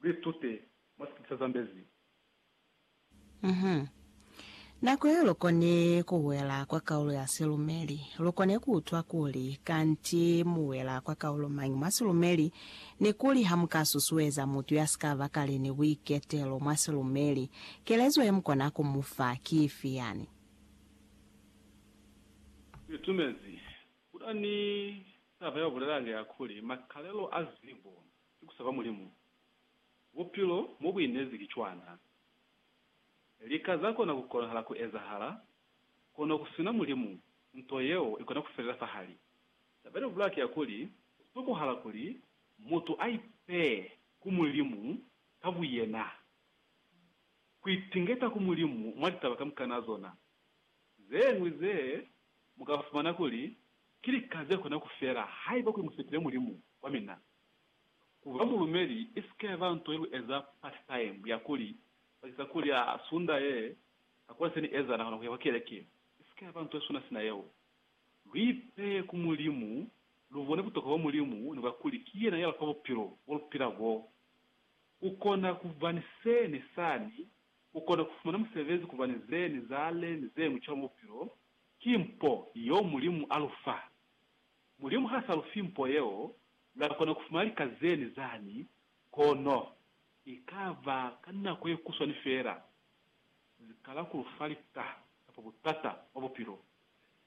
Lu itute mwa sikipi sa Zambezi. Mh. Nako ye lu koni ku wela kwa kaulo ya silumeli, lu koni ku utwa kuli kanti mu wela kwa kaulo mañi mwa silumeli, ni kuli ha mu ka susueza mutu ya si ka ba kale ni buiketelo mwa silumeli, kelezo ye mu kona ku mu fa ki ifi yani? Lu itumezi ku na ni taba ya ku bulela hande ya kuli, Makalelo a zibo ki ku saba Mulimu. Bupilo mo bu inezi ki cwana. Lika za kona ku konahala ku ezahala, kono ku sina Mulimu, nto yeo i kona ku felela fahali. Taba ni bulaki ya kuli, ku tokohala kuli mutu a ipee ku Mulimu ka buyena, ku itingeta ku Mulimu mwa litaba kamukana zona. Ze ñwi ze mu ka fumana kuli ki lika ze kona ku fela haiba ku i mu sepile Mulimu wa mina. Ku ba mulumeli isike yaba nto ye lu eza part time ya kuli bakeza kuli a sunda ye ka kuli seni eza nakona kuya kwa keleke isike yaba nto ye suna sina yeo. Lu ipeye ku Mulimu, lu bone butokwa bwa Mulimu ni bwa kuli ki yena ya lufa bupilo bo lu pila bo. Ku kona ku ba ni se ni sani, ku kona ku fumana musebezi ku ba ni ze ni zale ni zeñwi cwalo mwa bupilo, ki mpo yeo Mulimu a lu fa. Mulimu ha sa lu fi mpo yeo, lwa kona ku fumana lika zeni zani? Kono, i ka ba ka nako ye kuswani feela. Zi kala ku lu fa lika kapa butata bwa bupilo.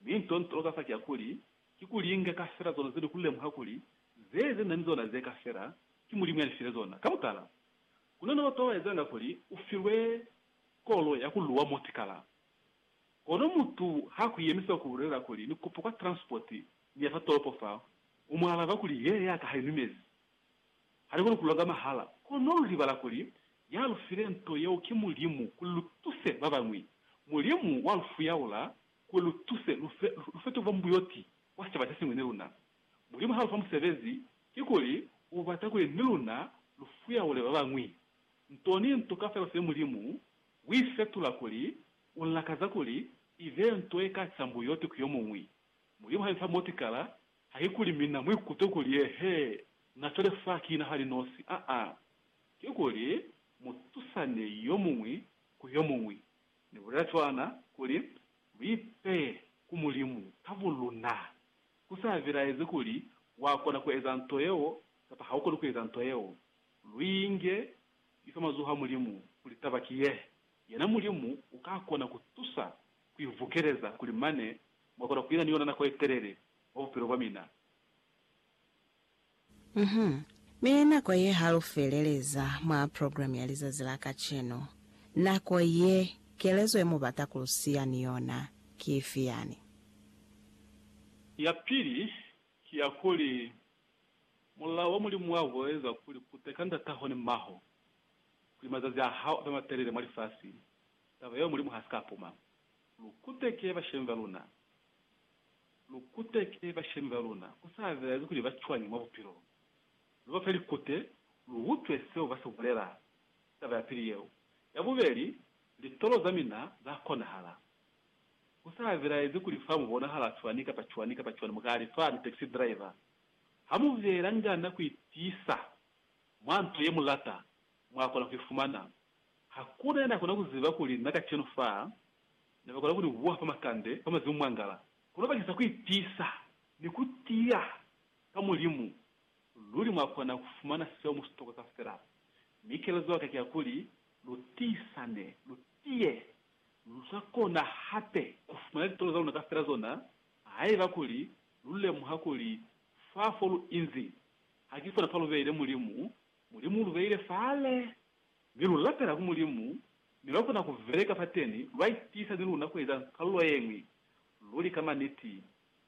Mi nto ntolo ka fa ki ya kuli, ki ku linga ka fela zona ze ni ku lemuha kuli ze ze na ni zona ze ka fela, ki Mulimu ya ni file zona. Ka mutala, ku na ni bato ba ba ezanga kuli u filwe kolo ya ku luwa motikala. Kono mutu ha kuyemisa ku bulelela kuli ni kupa kwa transport ni ya fa tolopo fa, u mu alaba kuli he ya ka ha inumezi. Ha ni koni ku longa mahala, kono lu libala kuli ya lu file nto yeo ki Mulimu kuli lu tuse ba bañwi. Mulimu wa lu fuyaula kuli lu tuse lu fe, lu fete ku ba mbuyoti kwa sicaba se siñwi ni luna. Mulimu ha lu fa musebezi, kikuli u bata kuli ni luna lu fuyaule ba bañwi. Nto ni nto kaufela se Mulimu Ku i fetula kuli u lakaza kuli i be nto ye ka sambo yoti ku yo muñwi. Mulimu ha nifa motikala, haikuli mina mu ikutwe kuli eehe, na cwale fa ki na hali nosi, aa. Kikuli mu tusane yo muñwi ku yo muñwi. Ni bulela cwana kuli mu ipeye ku Mulimu ka buluna. Ku sa bilaezi kuli wa kona ku eza nto yeo kapa ha u koni ku eza nto yeo. Lu inge Ni fa mazoho a Mulimu kuli taba ki ye, yena Mulimu uka kona ku tusa ku i vukeleza kuli mane mwa kona ku ina ni yona nako ye telele mwa bupilo bwa mina. Uhum. Mi nako ye ha lu feleleza mwa program ya lizazi la kacenu. Nako ye, kelezo ye mu bata ku lu siya ni yona ki ifi yani? Ya pili ki ya kuli, Mulao wa Mulimu wa ku eza kuli ku teka ndataho ni maho kuli mazazi a hao abe matelele mwa lifasi, taba yeo Mulimu ha si ka puma. Lu kuteke bashemi ba luna. Lu kuteke bashemi ba luna, ku sa bezi kuli ba cwañi mwa bupilo. Lu ba fe likute, lu utwe seo ba si bulela. Taba ya pili yeo. Ya bubeli, litolo za mina za konahala. Ku sa bilaezi kuli fa mu bonahala cwani kapa cwani kapa cwani, mu ka li, Fani, taxi driver. Ha mu biyela ngana ku itiisa mwa nto ye mu lata, mwa kona ku i fumana. Hakuna ya na kona ku ziba kuli na kacenu fa ne ba kona ku ni buha fa makande, fa mazimu mwangala. Kono bakisa ku itiisa ni ku tiya ka Mulimu, luli mwa kona ku fumana seo mu si toka kafela. Mi kelezo ya ka ki ya kuli, Lu tiisane, lu tiye, Lu sa kona hape ku fumana litolo za luna kaufela zona haiba kuli lu lemuha kuli fa fo lu inzi ha ki fona fa lu beile Mulimu. Mulimu u lu beile fale, mi lu lapela ku Mulimu, mi lwa kona ku beleka fateni. Lwa itiisa ni luna ku eza kalulo ye ñwi. Luli ka maniti,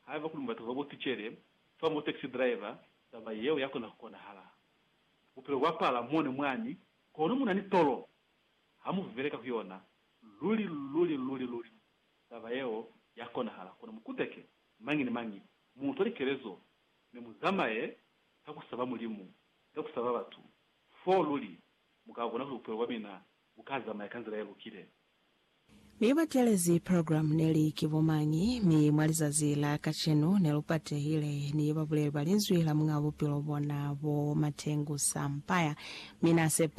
haiba kuli mubata ku ba bo tucele fa mo taxi driver, taba yeo ya kona ku konahala. Bupilo bwa pala mone mwani, kono mu na ni tolo Ha mu beleka ku yona, luli, luli, luli, luli taba yeo ya konahala. Kono mu kuteke, mañi ni mañi, mu utwa likelezo, mi mu zamaye ka ku saba Mulimu, ka ku saba batu, foo luli mu ka bona kuli bupilo bwa mina bu ka zamaya ka nzila ye lukile. Mi ba telezi programu neli ki bo mañi, mi mwa lizazi la kacenu ne lu patehile, ni babuleli ba Linzwi la Muñaa Bupilo bona bo Matengu Sampaya. Mi Na sepa.